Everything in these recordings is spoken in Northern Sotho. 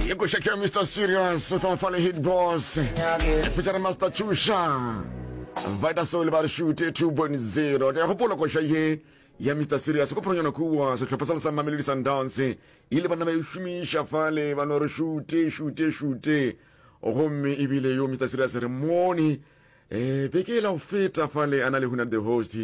le go shakira mr serious sa mafale hit boss featuring master chusha vita soul ba re shute 2.0 ke gopola koša ye ya mr serious go phoronyana kuwa sehlopha sa le sa mamelodi sundowns e ile banna ba e šomiša fale ba no re shute shute shute gomme ebile yo mr serious re mone um beke e la go feta fale a na le huna the host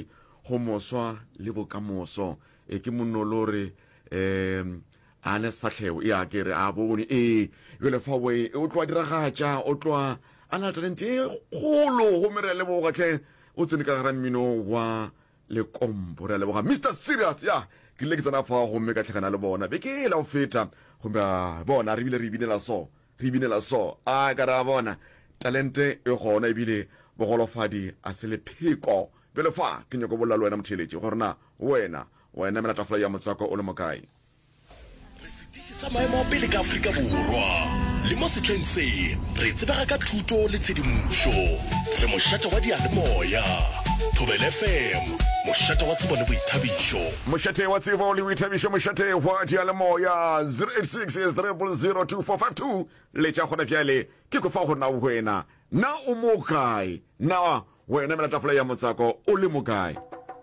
go moswa le bokamoso e ke monolo re um a ne sefatlhego e a ke re a bone ee jale fa o e- o tloa diragatša o tloa a na le talente e kgolo gomme re a leboga tlhe o tsene ka gara mmino wa lekompo re a leboga mr serious ya ke rile ke tsena fa gomme ka tlhagana le bona be ke e la go feta gomme a bona re bile re binela so re binela so a ka ra bona talente e gona ebile bogolofadi a se lepheko bjale fa ke nyako bolela le wena motheeletši gore na Wena, wa enamela tafola ya motswako o le mokae? Re setiši sa maemo a pele ka Afrika Borwa, le mo sehleng se re tsebega ka thuto le tshedimošo. Re mošate wa diyalemoya, Thobela FM, mošate wa tsebo le boithabišo. Mošate wa tsebo le boithabišo, mošate wa diyalemoya, 086 000 2452. Letša gona bjale, ke go fa go na wena. Na o mo kae? Na Go yona mela tafola ya motswako o le mokae?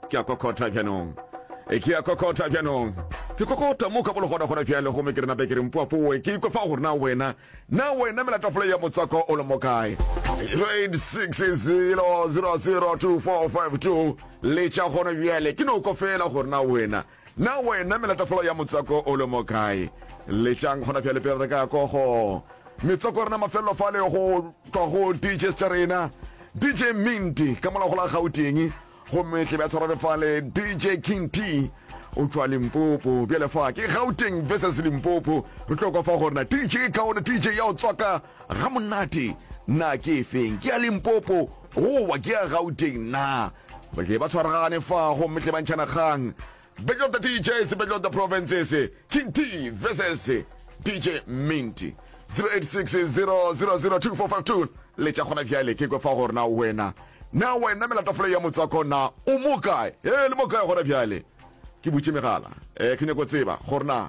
Ke a kokota bjanong. Ke a kokota bjanong. Ke kokota mo ka bologodagora bjale, gomme ke re, Nape, ke re, Mpoafoe, ke ikwa fa gore na wena, na wena mela tafola ya motswako o le mokae? Grade 6 0002452 le tša gona bjale, ke no kwa fela gore na wena, Na wena melatafolo ya motswako o le mo kae? Letšang gona bjale pele re ka ko go metswako rena mafelelo fa le go tšwa go DJs tša rena. DJ Minty ka mola go la Gauteng gomme tle bja tshwara re fa le DJ King T o tšwa Limpopo. Bjale fa ke Gauteng versus Limpopo, re tlo kwa fa gore na DJ kaone DJ ya o tswaka ga monate na ke efeng, ke ya Limpopo goba ke ya Gauteng na? tle ba tshwaragane fa gomme tle ba ntšhana kgang battle of the teachers battle of the provinces king t versus dj minty 0860002452 le tša gona bjale ke kwe fa gore na wena na wena melatafolo ya motswako na o mo kae e le mo kae gona bjale ke butše megala um ke nyako tseba gore na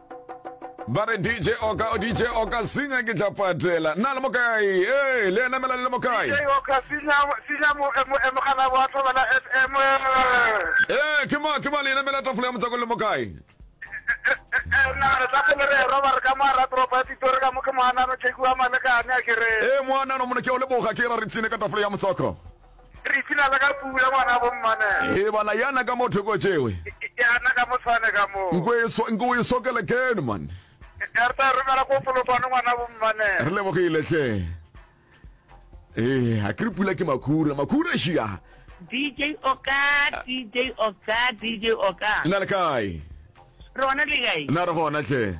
ba re dj oka dj oka sinya ke tla patela nna le mokae ee le ena mela le le mokae ee ke ma ke ma le ena mela tafola ya motsako le mokae ee moanano mona ke o leboga ke ra re tsine ka tafola ya motsako Re ipshina le ka pula ngwana bo mmane. Ee bana yana ka mo thoko tšewe. Yana ka mo tshwane ka mo. Nko e so nko e sokele ken man. Re ta romela ko folokwane ngwana bo mmane. Re lebogile hle. Ee ha kri pula ke makhura makhura shia. DJ Oka DJ Oka DJ Oka. Na le kae? Rona le kae? Na re gona hle.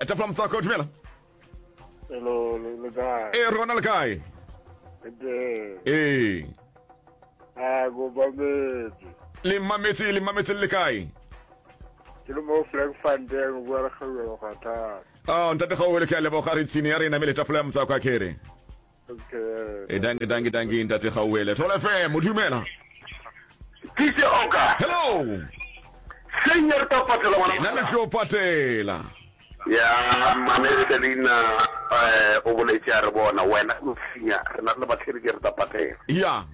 etafla motswako dumela Hello, le le kae? e re gona le kae Ke ee a go ba metsi. le mmametse le mmametse le le kae Ke le mo Frankfurteng go re ga go ga ta. a ntate gaowe le ke a leboga re tshine ya rena me le tafola ya motswako a kere e danki danki danki ntate gauele tole fm o dumela Tise Oka. hello Senior tla patela ke ngwana. na le tlo patela Ya mane re tle leina eh o boletse a re bona wena o sinya re na le batlhedi ke re tla patela. ya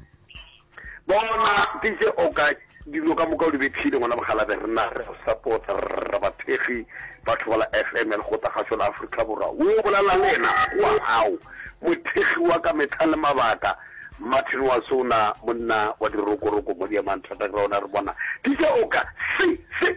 Bona, DJ Oka, dilo ka moka o di bethile, ngwana Mokgalabje. Rena re go support, rra bathekgi ba Thobela FM ya Lekgotla Kgašo la Afrika Borwa. Wo bolela le yena oa hao, mothekgi wa ka mehla le mabaka, Martin Wasona, monna wa dirokoroko mo Diamantata Ground. A re, Bona, DJ Oka, se, se,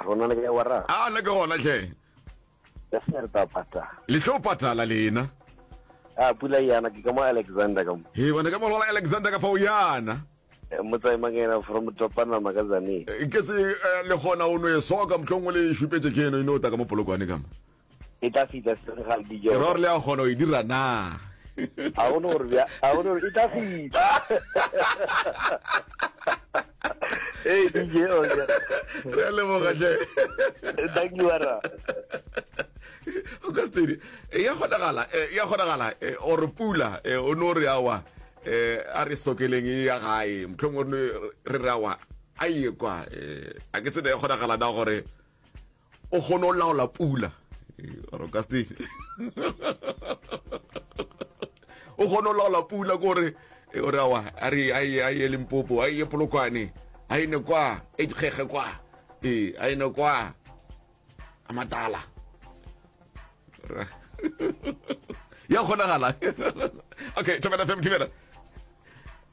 Rona le kae wara? A na ke gona hle. Ka se re tapata. Le tlo patala lena. A pula yana ke ka mo Alexander ka mo. He bona ka mo lola Alexander ka fa o yana. Eh, Motsai Mangena from Topana Magazane. Eh, ke se eh, le gona o no e soka motlong o le šupetše ke eno e no ta ka mo polokwane ka mo. e tla fita senegal dijo ke ror le a kgona go e dira na a gone gore bja a gone gore e tla fita Hey DJ Oja. Re le mo gatle. Thank you ara. O ka tsere. E ya gona gala, e ya gona gala. E o re pula, e o no re awa. E a re sokeleng e ya gae. Mtlhong o re re awa. A ye kwa. E a ke tsene ya gona gala da gore o kgone go laola pula o ka se o kgone go laola pula kore e, o re awa a re a ye a ye limpopo a ye polokwane a ene kwa e dikgege kwa ee a ene kwa a matala ya kgonagala okay thobela fm thibela